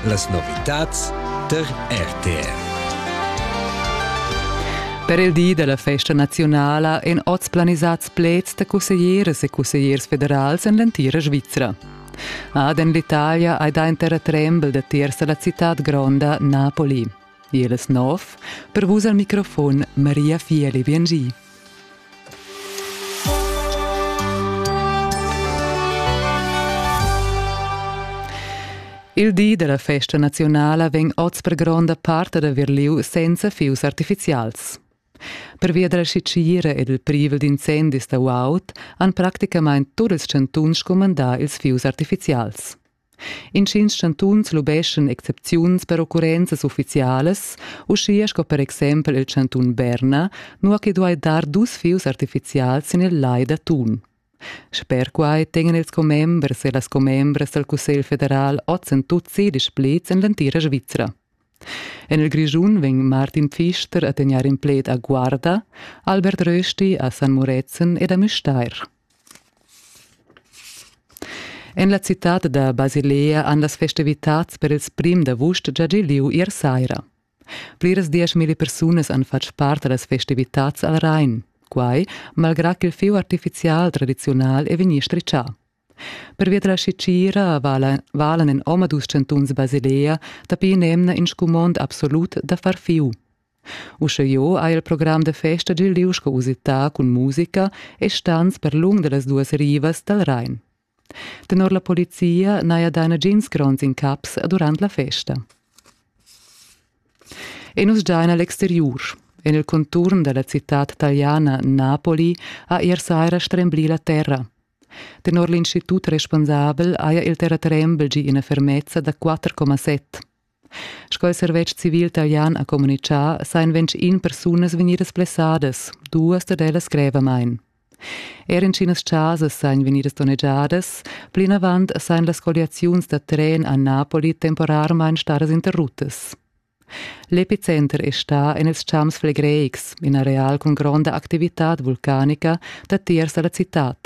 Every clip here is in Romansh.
Las novitads tar RTR. Per il di della festa nazionala èn oz planisats pleds da cusseglieres e cussegliers federals en l'entira Svizra. Ad en l'Italia hai dà in terratrembel da tiers da la citad gronda Napoli. Igl es nov per vus al microfon Maria Fieli Biengi. Il di della festa nazionala vegn oz per gronda parte da Verliu senza fius artificials. Pervia della sicira ed il privel d'incendis da UAUT han praticamain tot ils chantuns scumandà ils fius artificials. Intgins chantuns lubeschan excepziuns per occurrenzas uffizialas, uschia sco per exempel il chantun Berna, nua che duai dar dus fius artifizials sin il lai da Thun. Sper quai tegnan ils commembers e las commembras dal Cussegl federal oz en tut sedisch pleds en l'entira Svizra. En il Grischun vegn Martin Pfister a tegnair in pled a Guarda, Albert Rösti a San Murezzan ed a Müstair. En la citad da Basilea han las festivitads per ils prim d'avust gia gì lieu ier saira. Pliras dieschmilli persunas han fatg part a las festivitads al Rhein, quai malgrà ch'il fieu artifizial tradiziunal è vegnì stritschà. Pervia da la scicira valan en omadus chantuns Basilea dapi in'emna in scumond absolut da far fieu. Uschejeu ha il program da festa dil liug sco usità cun musica e stans per lung dallas duas rivas dal Rhein. Tenor la polizia n'haja dà nagins gronds incaps durant la festa. E nus giain a l'exteriur. En il conturn dalla citad taliana Napoli ha ier saira stremblì la terra. Tenor l'institut responsabel haja il terratrembel gì ina fermezza da 4,7. Sco il servetsch civil talian ha communitgà, sajan ventg persunas vegnidas blessadas, duas dad ellas grevamain. Er intginas chasas sajan vegnidas donnegiadas, plinavant sajan las colliaziuns da tren a Napoli temporarmain stadas interruttas. L'epicenter è stà en ils champs flegreics, in areal cun gronda activitad vulcanica datiers da la citad.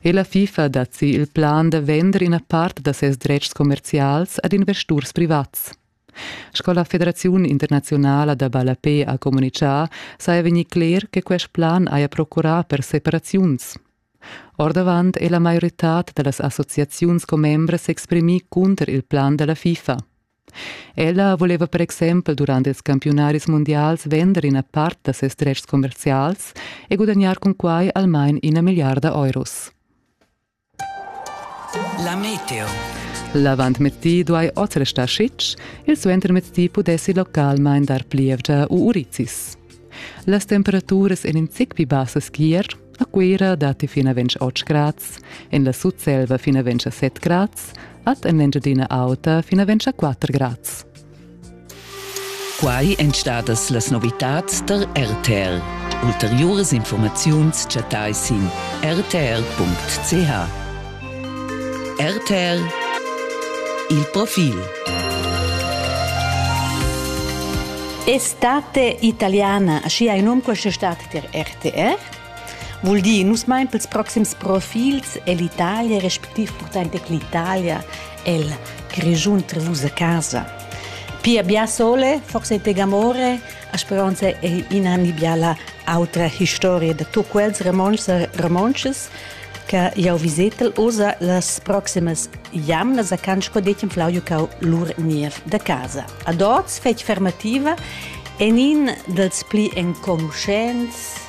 E la FIFA dat si il plan da vender ina part da ses dretgs commerzials ad investurs privats. Sco la Federaziun internaziunala da ballape ha communitgà, saja vegnì cler che quest plan haja procurà per separaziuns. Ordavant è la maioritad da las associaziuns commembras s'exprimì cunter il plan da la FIFA. Ella voleva per exempel durant ils campiunaris mundials vender ina part da ses dretgs commerzials e gudagnar cun quai almain ina milliarda euros. La meteo. L'avantmezdi duai oz restar sitg, il suentermezdi pudessi localmain dar plievgia u urizis. Las temperaturas èn in zic pli bassas ch'ier. A Cuira datti fin a 28 grads, en la Sutselva fin a 27 grads, ad en l'Engiadina Auta fin a 24 grads. Quai èn stadas las novitads der RTL. Ulteriuras informaziuns chattai sin rtl.ch. RTL Il profil Estate italiana, schi hai num questa estate ter RTR. Vuol dire, nus mein pels proxims profils e l'Italia, respektiv portante che l'Italia è il Grigiun Trevusa casa. Pia bia sole, forse te gamore, a speranza è in anni biala autra historia de tu quels romances, romances che jau visetel usa las proximas jamnas a can sco detg Flauio cau lur niev da casa. A dots fetg fermativa en in dels pli enconuschents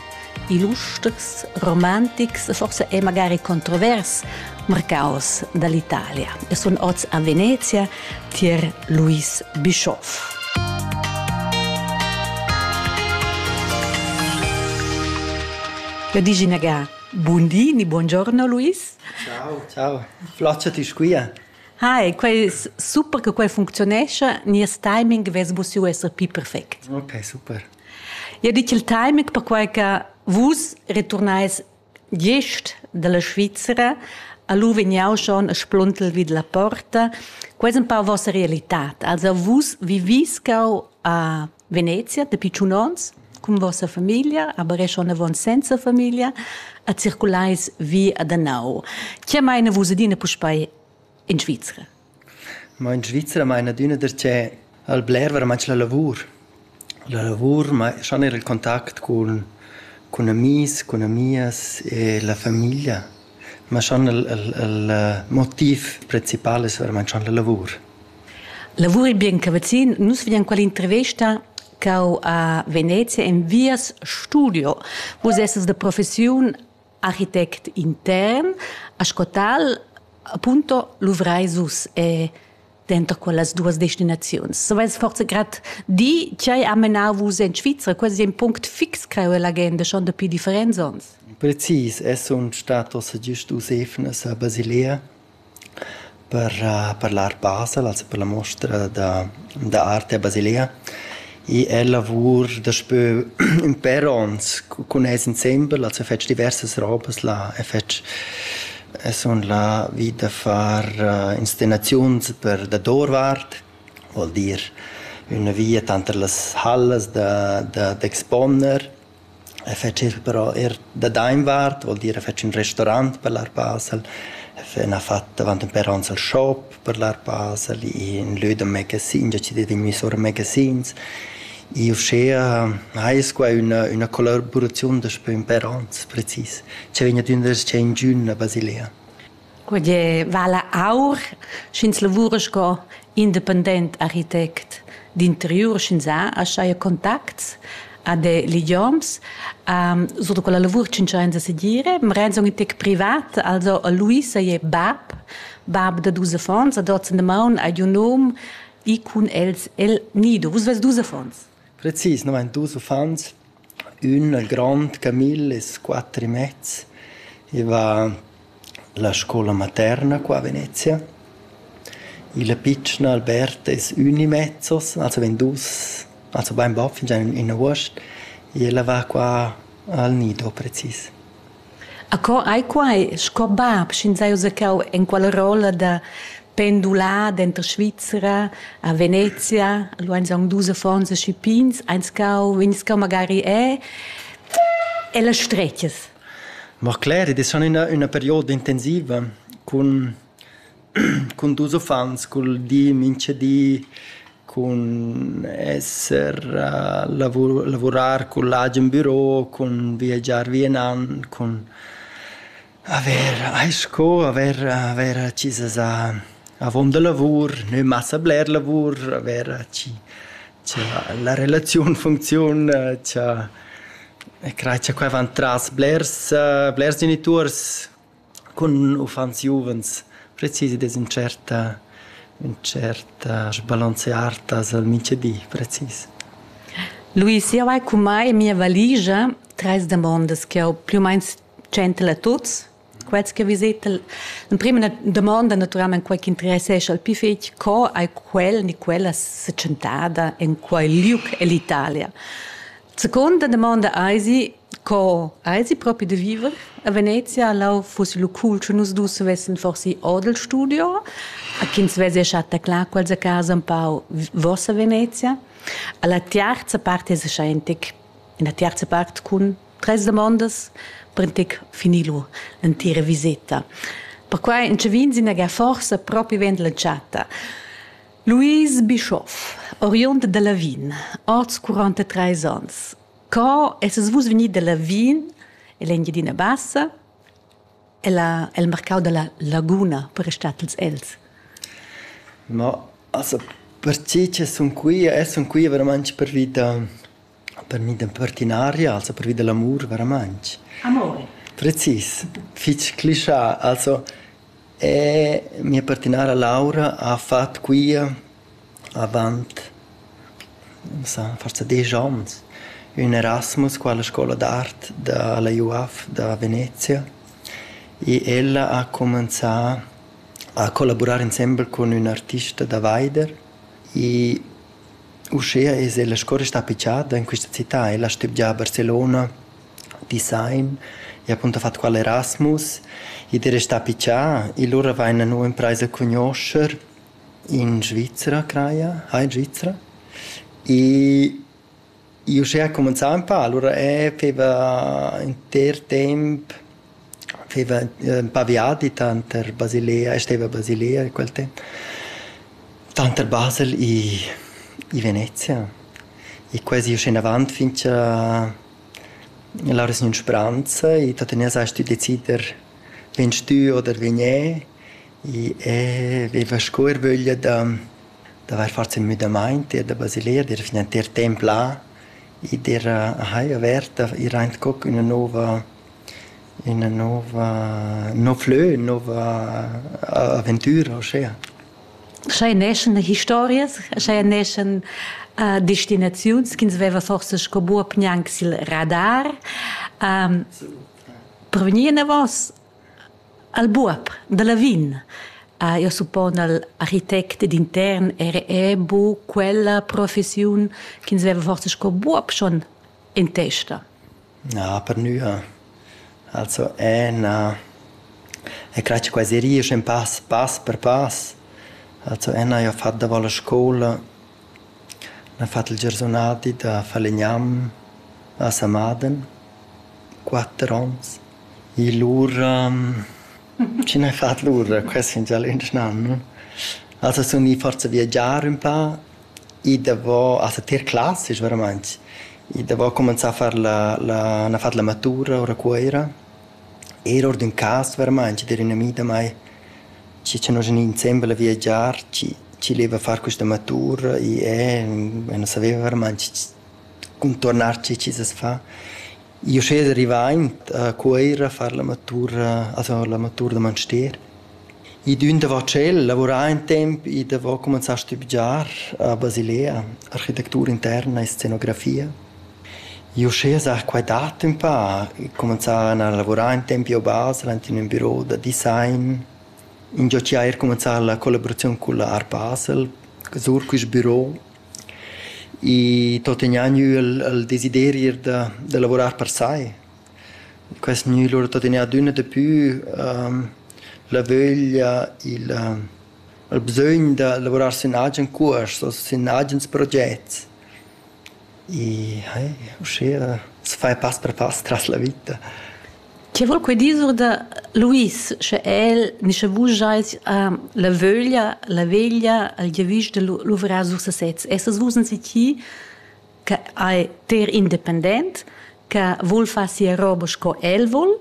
illustres, romantics e forse è magari controvers marcaus dall'Italia. E sono oz a Venezia tier Luis Bischoff. Eu digi nagà Bun di ni buongiorno Luis. Ciao, ciao. Flaccia ti squia. Hi, quei super che quei functionescha, nies timing vess bu siu esser pi perfect. Ok, super. Ia dit il timing perquai che vus returnais gest dalla Svizzera a lu vegniau schon a spluntel vid la porta. Quei es un pau vossa realitat. Also vus viviscau a Venezia dapi tschun onns cun vossa famiglia, aber è schon avon senza famiglia, a circulais vi ad Anau. Che meine vus adina puspei in Svizzera? Ma in Svizzera meine adina perché al bler var match la lavur. La lavur ma schon era il contact cun cun amis, cun amias e la famiglia. Ma schon il, il, il motiv principal è veramente schon la lavur. Lavuri bien ca vacin. Nus vegnan quella intervesta ch'eu a Venezia envias studio. Vus essas da professiun architect intern, ascotal, appunto luvrais us e denter quellas duas destinaziuns. Savais forza grad dir ch'ei ha menau vus en Svizra? Quasi è in punct fix creu l'agenda, schon dapi differents onns. Precis, es sun statos giust us efnas a Basilea Per per l'art basel, also per la muostra da da arte a Basilea i è lavur daspö ün pêr ons cun els insembel, also fetsch diversas robas là e fetsch e sun là vi da far inscenaziuns per dadourvart, vuol dir üna via tanter las hallas da da d'exponer. E fetschies però eir da dainvart, vuol dir a fetsch ün restorant per l'ar pasel, a fe ün ha fat davant ün però ans al shop per l'ar pasel, in lö da magazins, a ci det vegnü sura magazins. I uschea ais qua üna üna collaboraziun daspö ün per ans precis, cha vegn ad üna s-cher ingün a Basilea. Quei vala aur, sch'ins lavura sco independent architect d'interiur, sch'ins ha aschia contacts ad idioms. sur da quella lavur tschintschains a segir. Marenz è in tec privat, also a Luisa è bab, bab da dus affons, ad oz en damaun hai giu num, i cun els el nido. Vus vus dus affons? Precis nu vain dus uffants. Ün al grond Camille es quatter e mez. I va la scoula materna qua a Venezia. Il pitschen Albert es ün e mezzos, also vegn dus, also bainbod fingià in üna uost. I ella va qua al nido precis. Acco ei quei sco bab, sch'ins ha uzacchau enquala rolla da pendular denter Svizra a Venezia, lu ein aunc dus affons aschi pigns, eins cau, vegnis cau magari e e las stretgas. Ma cler, ed è stata üna üna perioda intensiva cun Cun dus uffants, cul di minchadi, cun esser lavurar cun l'agen büro, cun viagiar vi e nan, cun avair eir sco avair avair accisas a avon da lavur, nö massa bler lavur, avair chi cha la relaziun funcziun, cha e crai cha quai van tras blers blers genituors Cun uffants giuvens precisi dess ün tscherta ün tscherta sbalanzeartas al mintgadi precis. Luis, jau hai cun mai en mia valigia trais damondas ch'jau plü u main tschentel a tuts. Quels che visetel l'emprima damonda natüralmaing quai ch'interessescha il pü fich, co hai quel ni quella se tschentada in quai liug ell'Italia? Seconda domanda eisi co eisi propi da viver a Venezia lau fuss lu cool che nus dus vessen forsi odel studio a ch'ins vesi chatta clar quels a casa un pau vossa Venezia alla terza part es scheintec in la terza part cun tres domandas prentec finilu l'entira viseta perquai in che vin sin ga forsa propi vend la chatta Louise Bischoff, oriund da Lavin, oz 43 ans. Co essas vus vegnì da Lavin en l'Engiadina Bassa? Ella, el marcau dalla laguna per restatels els. Ma, also, per tgi che sun qui e sun qui veramente per vita Per mi d'impertinaria, also pervi da l'amur veramaing. Amor. Precis, fich clischà. Also mia pertinara Laura ha fat quia avant, non so, forsa desch ons ün Erasmus qua alla scoula d'art da la UAF da Venezia e ella ha cumanzà a collaburar insembel cun ün artista da vaider e Uschia es ella sco restà picciata in quista cità ella stübgia a Barcelona, Dissain, i ha appunto fat qual Erasmus, id es restà piccià, e lura vaina nu imprais a cugnuoscher in Svizra craja, ha in Svizra? E Io uschè ha cumenzà ün pa, alura eh feva inter temp feva ün pa viadi tanter Basilea e steva a Basilea quel temp, tanter Basel i i Venezia e quasi uschè inavant fin cha lauras gnün spranza e tuttenina sast tü decider vegn stü oder vegn e e veva sco ervöglia da d'avair fat ün müdamaint ir da Basilea, d'ir finantier temp là, i d'ir a haja averta, ir aint co ch'üna nouva üna nouva ün nouv lö, ün nouva aventüra uschea. Scha i neschan historias, scha i neschan destinaziuns chi'ns veva forsa sco buob gnanc sül radar per vegnir inavos Al buob da Lavin ha jeu suppon al architect ed intern era era buca quella professiun ch'ins veva forsa sco buob schon en testa. Na, per nua. Also è na è crac quasi riesce in pass pass per pass. Also è na io ho fatto davo la scoula n'ha fatto il giorsunati da Falegnam a Samaden, quatter onns. I lura chi n'hai fat lura quest fin già l'indesch an no? Also sun i forsa viagiar ün pa, i davò, also tier classics veramaing, i davò cumanzà a far la la n'ha fat la matura our a Cuoira, eir our d'ün cas veramaing d'ir ün ami da mai chi cha nos gnü insembel a viagiar, chi chi leva far quista matura, i e, e nu saveva veramaing cun turnar chi chi's as fa. Io schez rivaint a Cuoira a far l'amatur a far l'amatur da Manstier. I d'ün davo tschel lavurà ün temp, i davo cumanzà a stübgiar a Basilea architectura interna e scenografia. Io schez a quai dat ün pa, cumanzà a lavurar ün temp io a Basel ant in ün büro da design, ingio chi haja eir cumanzà la collaboraziun cul Art Basel, sur quist büro. I tuttegna gnü il il desiderir da da lavurar per sai. Quest gnü lura tuttegna adüna dapü la vöglia, il il bsögn da lavurar sün agen cuors o sün agens progets. I uschea s'fai pass per pass tras la vita. Che voul quei dir sur da Luis, sche el ni sche vus schais uh, la vöglia, la veglia, il giavüsch da luvrar sur sesez. Essas vus in siti che è ter independent, che vul far sia roba sco el vul,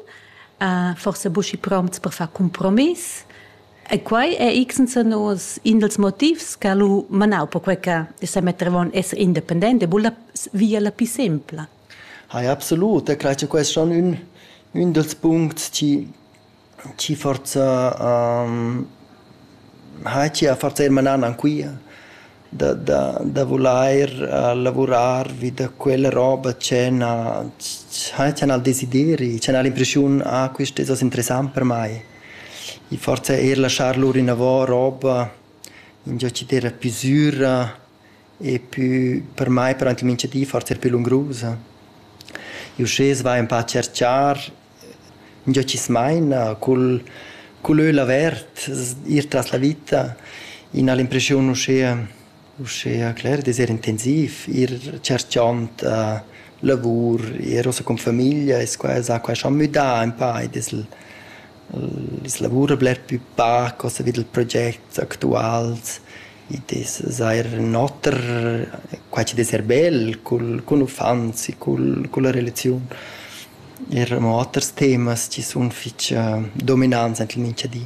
uh, forse buschi prompts per far compromiss. E quai è x senza nos in dels motivs che lu manau per quei che sa mettevon essere independente, e via la più semplice. Hai absolut, e crei che quels san ün ün dals puncts chi chi forsa ha chi ha forsa eir manan anquia da da da vulair lavurar vi da quella roba che na che n'ha'l desideri, che n'ha'l l'impreschiun ah quist es hoz interessant per mai. I forsa eir laschar lur inavo roba ingio chi d'eira pü süra e pü per mai parent ün'iniziativa forsa er pü lungrusa. Uschè s'va ün pa tscherchar ingio chi's maina cul cul öl avert, ir tras la vita, ina l'impreschiun uschea uschea cler d'esser intensiv, ir tscherchond lavur, ir ussa cun famiglia e quai s'ha quai schon müdà ün pa ed es L's lavura bler pü pac cuossa vi dal proget actuals. Id es seir ün oter, quai chi'd es eir bel cul cun uffants e cul culla relaziun. Eir amo oters temas chi sun fich dominants aint il mincha di.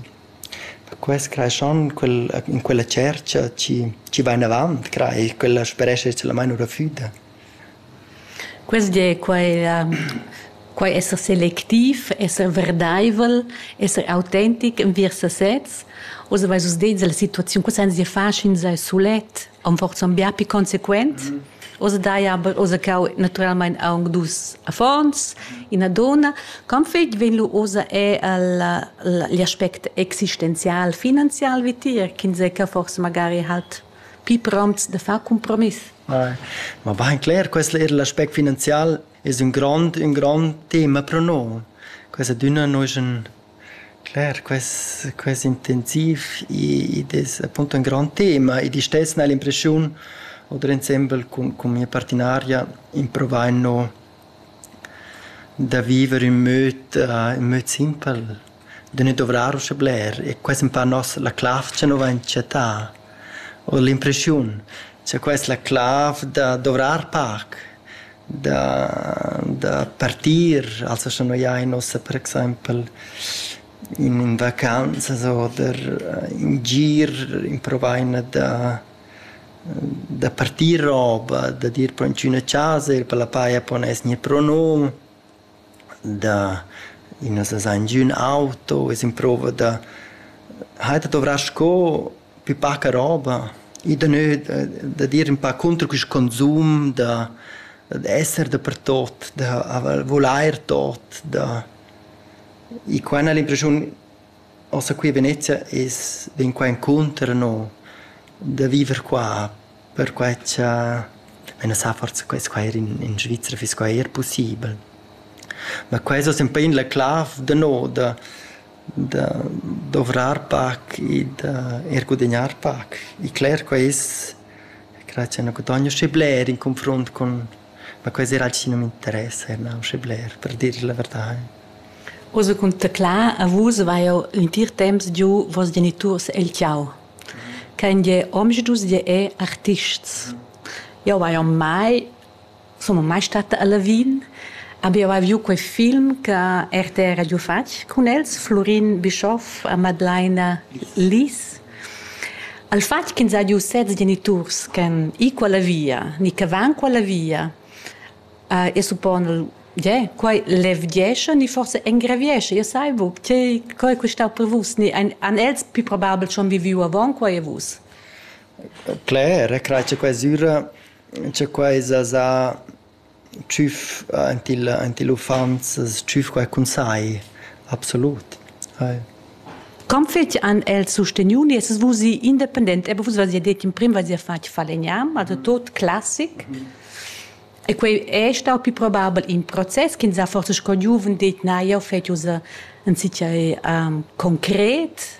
Quels creeschan quel in quella tschercha chi chi va inavant, crei, quella sperescha solamaing ora füda. Quest di è quai la quai esser selectiv, esser verdaivel, esser autentic enviers sasez. Oz avais vus detg la situaziun, culs ans dir fasch'ins sulet, am forsa ün bia pi consequent. Oz dai aber oz cau natüralmaing aunc dus affons, ina donna. Quant fetg vegn lu oza er il, igl aspect existenzial, finanzial vitier, ch'ins è ca forsa magari halt pli promts da far compromiss. Ma bain cler, questo er l'aspect finanzial es un grand, un grand tema pro noi. Questa dünna nosch un Cler, quest, quest intensiv id es appunto un grand tema ed i stess n'hai l'impreschiun oder ensemble con, con mia partinaria improvain no da viver in möd, uh, in möd simpel. da ne dovrar ussa bler e quess empau noss la clav cha nu vain chattà. Ho l'impreschiun cha quai es la clav da dovrar pac, da da partir, also scha noi ain ussa per exaimpel in in vacanzas oder in gir improvaina da da partir roba, da dir po in d'üna chasa, ir pa la paja, po gnir pro num. da ina sesa ingün auto, es improva da haider dovrà sco pü paca roba, i da nö dad ir ün pa cunter quist consum, da esser dapertot, da vulair tot, da... I qua n'hal l'impresiun Ossa qui a Venezia es vegn qua encunter no da viver qua perquai cha ün sa forsa quels qua eir in in Svizra fiss quai eir pussibel. Ma quai es sempe in la clav da no da da dovrar pac e da eir gudagnar pac. E cler quai es, grazie a üna gudogna schi bler in confrunt cun Ma quei serà alch chi nu m'interessa e na usche bler, per dir la verdà. Oz cun teclar a vus vai jeu l'entir temps giu vos geniturs el tgau. Kein je omschdus je è artists. Jeu vai on mai sun mai stata a Lavin, aber jeu hai viu quei film che RTR ha giu fatg cun els, Flurin Bischoff a Madlaina Lies. al fatg ch'ins ha giu sez geniturs ch'han i quella via ni che van quella via uh, e suppona yeah, quai levgiescha ni forse engraviescha io sai bu tgei co è questa per vus ni an, an els più probabel schon viviu avon quai e vus Claire, crai c'è quasi c'è quasi sa tschüf aint il aint il uffants tschüf quai cun sai, absolut. Com fetsch han els susteniu nies vusi independent? Ebbä vus v'has ja det in prim v'has ja fatg falegnam, also tot classic. E quei è stau più probabel in process ch'ins ha forsa sco giuven det na, jau fet ussa in sitgei concret.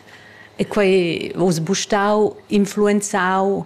E quei vus bu stau influenzau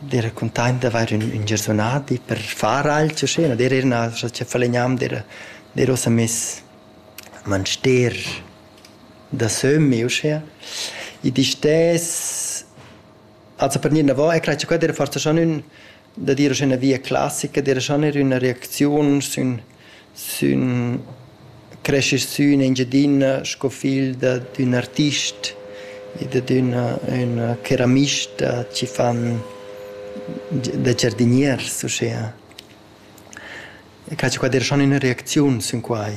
d'eira cuntaint d'avair ün ün giarsunadi per far ailcha scena, d'eir ir üna cha falegnam d'eira d'eir uossa miss a Manster da sömmi uschea. I distess also per gnir inavo e crai cha quai d'eira forsa schon ün da dir uschè üna via classica, d'eira schon eir üna reacziun sün Sün creschi sün Engiadina sco figl da d'ün artist e dad üna üna ceramista chi fan da giardiniers uschea. E chatso qua der schon üna reacziun sün quai.